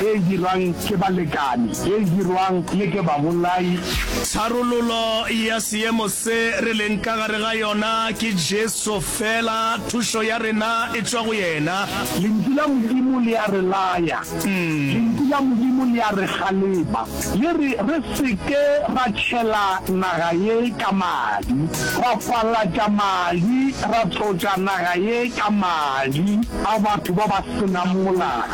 e e dirwang ke balekane, e e dirwang le ke babolai. Tharololo ya seemo se re leng ka gare ga yona ke Jesu fela, thušo ya rena e tšwa go yena. Lentšu la Modimo le a re laya, Lentšu la Modimo le a re kgalema, le re re se ke ra tšhela naga ye ka madi, ra falatša madi, ra tlotša naga ye ka madi a batho ba ba se nang molao.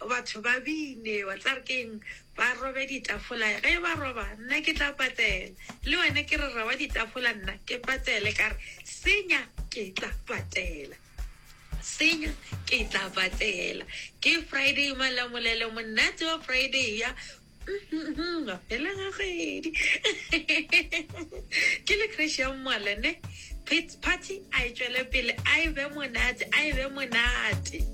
Batho ba bine, wa tsaya gore ke eng? Ba robe ditafola. Ge ba roba, nna ke tla patela. Le wena ke re roba ditafola, nna ke patele. Ka re, Senya, ke tla patela. Senya, ke tla patela. Ke Friday, Malamulele, monate wa Friday ya. Mafela ga kgwedi. Ke le crash ya mmala, ne? Party a e tšwele pele, a e be monate, a e be monate.